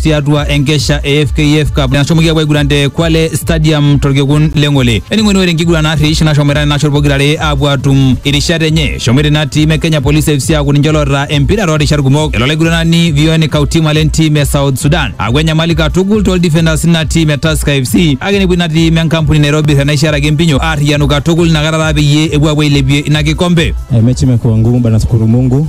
tiatua enkesha e FKF Cup nashomoki apuo aiguran te Kwale Stadium torkekun le Ng'ole. Ening'oni ore enkiguran narrish nashomoita nena shot pokirare apuo atum irishat enye. Eshomoita ina tiim e Kenya Police FC aaku ninche loota empira toorishat kumok. Elo olaiguranani Vion Kautima le ntiim e South Sudan aaku enyamali katukul toldefenders ina tiim e Tusker FC kake nepuo ina tiim enkampuni Nairobi tenaisharaki empinyo aarriyianu katukul inakata taa peyie epuo apuo ailepie ina kikombe. Eh, mechi imekuwa ngumu bana, shukuru Mungu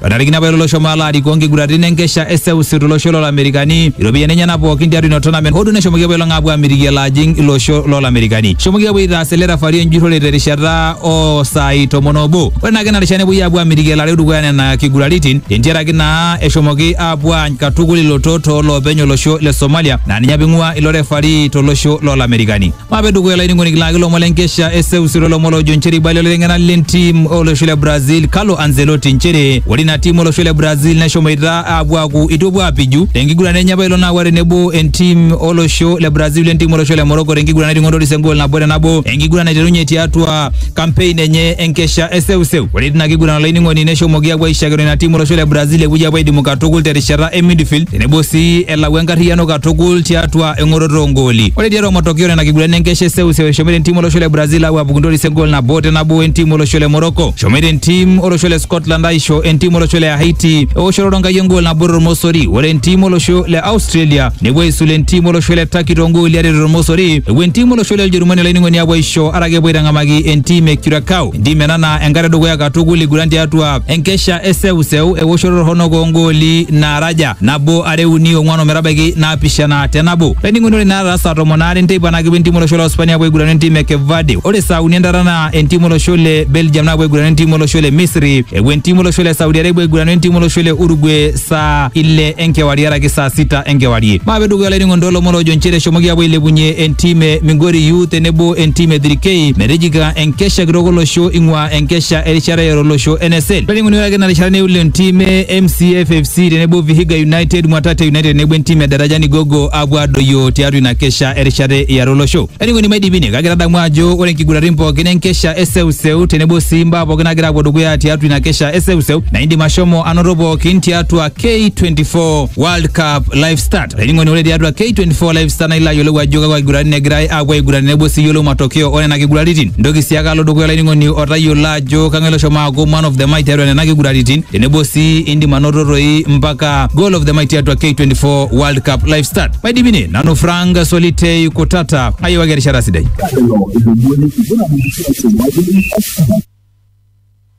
Patarikini apa ilo shomo alo arikoo nkiguratin enkesha e seuseu tolosho lolamerikani iropiyiani enyenak pookin tiatua ina tournament hoo duo neshomoki apa ilo ng'apuo amitiki elo ajing ilo osho lolamerikani shomoki apuo aitaas ele refari enjurrore terishata oo saai tomon obo ore naake ina rishata nepuoi apuo amitiki elareu dukuya nena kiguraritin tentiaraki naa eshomoki apuo aany katukul ilotot tooloopeny olosho le somalia naa ninye apa ing'ua ilo refari tolosho lolamerikani mape dukuya laining'oni kilaki lomon lenkesha eseusiro lomon lojo nchere ibali oliteng'ena lentim olosho le brazil carlo anzelotti nchere ore ina tim olosho le brazil neshomoita aapuo aaku itu epuo aapiju tenkiguran enye apa ilo naawa tenebo entim olosho le brazil entim olosho le morocco tenkiguran nating'otorisi engol nabo te nabo enkiguran naiterunye tiatua kampein enye enkesha eseuseu ore tina kiguran olainining'oni neshomoki apuo aishakino ina tim olosho le brazil epuoi apuo aidimu katukul terishata e midfield tenebo sii elau enkarriyiano katukul tiatua eng'oroto oongooli. Ore tiatua matokeo nena kigurani enkesha e seuseu eshomoita entim olosho le Brazil aapuo apuku ntoris engool nabo te nabo entim olosho le Morocco. Eshomoita entim olosho le Scotland aisho entim olosho le Haiti eoshoto Ronkai engool nabo tormosori. Ore entim olosho le Australia nepuo aisul entim olosho le Turkey toongooli are tormosori. Epuo entim olosho le Ujerumani olainining'oni apuo aisho araki epuo aitang'amaki entim e Curacao. Entim ena naa enkata edukuya katukul iguran tiatua enkesha e seuseu eoshoto torronok oongooli naara aja nabo are uni ong'uan ometabaiki naapishana te nabo laining'oni ore naata saa tomon aare nteipa naa kepuo entim olosho le Hispania apuo aigurana entim e Cape Verde ore saa uni entata naa entim olosho le Belgium naapuo aigurana entim olosho le Misri epuo entim olosho le Saudi Arabia aigurana entim olosho le Uruguay saa ile enkewarie araki saa sita enkewarie maape dukuya laining'oni toolomon loojo nchere eshomoki apuo ailepunye entim e Migori Youth tenebo entim e 3K metijinga enkesha kitok olosho ing'ua enkesha erishata e olosho NSL. Peling'uni ore ake ina rishata neule entim e MCF FC tenebo Vihiga United, Mwatate United tenebo entim e Darajani Gogo apuo adoyio tiatua ina kesha erishata e olosho. Peling'uni maidipini kake tadamu ajo ore nkiguratin pookin enkesha e seuseu tenebo sii mbaa pookin nagira apuo dukuya tiatua ina kesha e seuseu na indim ashomo anoto pookin tiatua K24 World Cup Live Stats. Olainining'oni ore tiatua K24 Live Star naa ilo ayiolou ajo kakwa kiguratin egirai aapuo aiguran tenebo sii iyiolou matokeo oo nena kiguraritin. Ntoki sii ake alo dukuya olainining'oni otayiolo ajo kang'ae loshomo aaku man of the match tiatua nena kiguraritin tenebo sii indim anoto toi mpaka goal of the match tiatua K24 World Cup Live Star. Maidipi ine nanu Frank Solitei Kutata ayiewaki erishata sidai.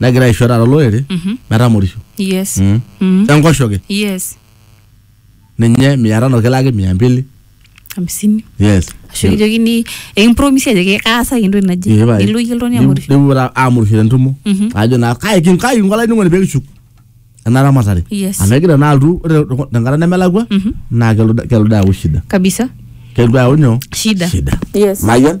negira aisho taata olorere Mhm. metamorisho yes Mm. Mm. enkoshoke yes ninye mia tano kilaki mia mbili hamsini yes ashu kijokini ekimpromisi ajoki kaasaki entoki naje Ee, pae. nilo iyie oltung'ani Nipu- amorisho nipuo taa amurisho tentumo Mhm. ajo naa kai kin- kai kinko olainining'oni pee kishuk ena ramatare Yes. amu egira naa altu ore te- tenkata nemelakua Mhm. naa kelotu kelotu ayau shida kabisa kelotu ayau nyoo shida shida yes mayian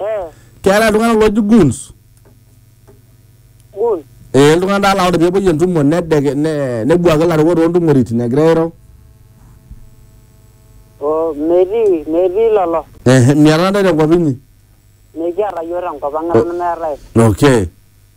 Eh, keetae iltung'anak looji goons gun. ee iltung'anak taa laa ore peepuoi entumo nedeke ne- nebuaki ilarikok toontumoritin egira airo Oh, metii, metii lolo. Eh, miata ntae tenkop inyi Mekiata yiok tenkop ang eton meetae. okay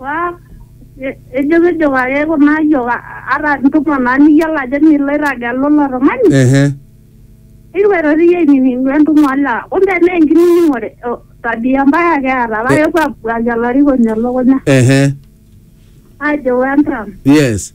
Waa, e- ejokijoki ake kuna ayiok a- ata ntumo naa niyiolo ajo milo airrag alo ilo tung'ani Ehe. nikipuo aitoki iyie ainining'u entumo olewa kumbe naa enkinining'ore o tabia mbaya ake eeta paa kepuo aabuaki olarikoni elukunya Ehe. aajo wentram Yes.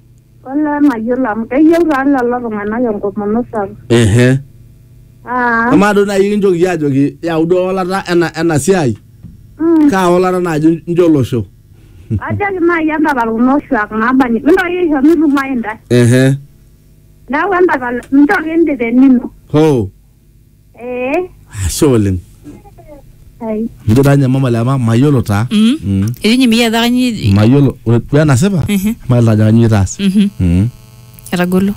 Olee mayiolo amu keyieu taa lelo tung'anak enkomono sapuk. ehe Ah, amaa duo naaji kinjoki iyie ajoki yau duo ewalata ena ena siai mm. kaa walata naaji injo olosho Ajoki naaji entapal kuna oshuak naabanji. Mintoki aisho mitumayu intae. ehe Neeku entapal nchoo kidip enino. hoo Eh, ashe oleng ai. mijo taa ninye mama lema mayiolo taa Mm. Mm. etii ninye miyiolo ajo kanyioo mayiolo ore duo enasipa Mhm. mayiolo ajo kanyioo itaas Mhm. Mm. etagolo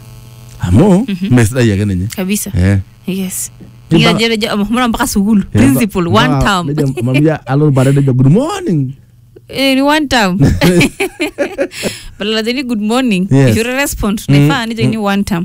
amu mee sidai ake ninye kabisa Eh. yes Ni Nikijo- mpaka- nikijo- omhomo mpaka sukuul Eh, principal mpaka- one term nejo mamia alo bare nejo good morning Eh, ni one term badala ajoni good morning Yes. you respond Mm. naifaa nijoni one term